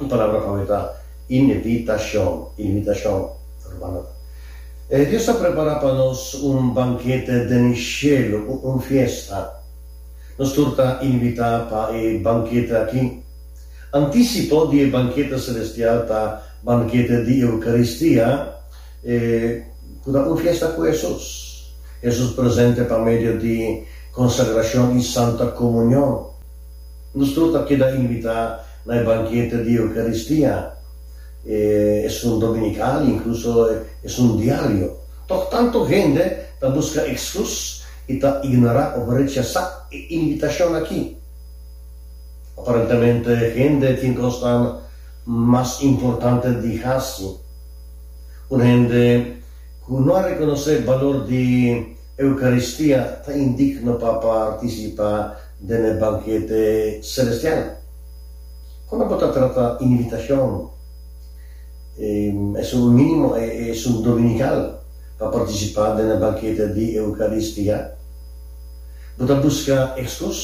Un palabra pa mi ta inivitashon, inivitashon romano ta. E Dios a prepara pa nos un bankete den e shelu, un fiesta. Nos tur ta inivitá pa e bankete akí. Antisipo di e bankete selestial ta bankete di Eukaristia, e ku ta un fiesta ku Hesus. Hesus presente pa medio di konsagrashon i Santa Komunion. Nos tur ta keda invitá na e bankete di Eukaristia esun dominical, inkluso esun diario. Tok tantu hende ta buska ekskús i ta ignorá òf rechasá e invitashon akí. Aparentemente hende tin kosnan mas importante di hasi. Un hende ku no a rekonosé balor di. Eukaristia ta indik no pa partisipá den e bankete selestial. Kon abo ta trata inivitashon? Esun mínimo esun dominikal pa partisipá den e bankete di Eukaristia? Bo ta buska ekskos?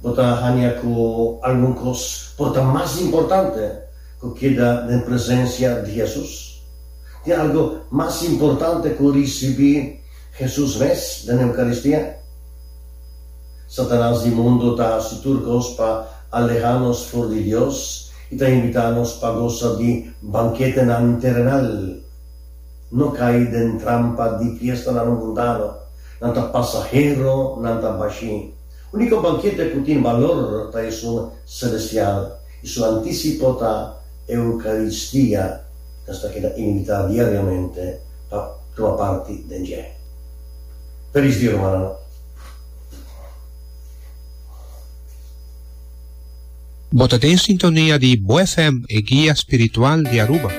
Bo ta haña ku algun kos por ta mas importante ku keda den presensia di Hesus? tin algu mas importante ku risibí Hesus mes den Eukaristia? Satanas di mundu ta hasi tur kos pa alehá nos for di Dios i ta invitá nos pa gosa di banketenan terenal. No kai den trampa di fiestanan mundano, nan ta pasahero, nan ta bashí. Úniko bankete ku tin balor ta esun selestial. I su antisipo ta Eukaristia, nos ta keda invitá diariamente pa tuma parti den dje. Felis dia, rumannan! Bo ta den sintonia di Bo FM, e guia spiritual di Aruba.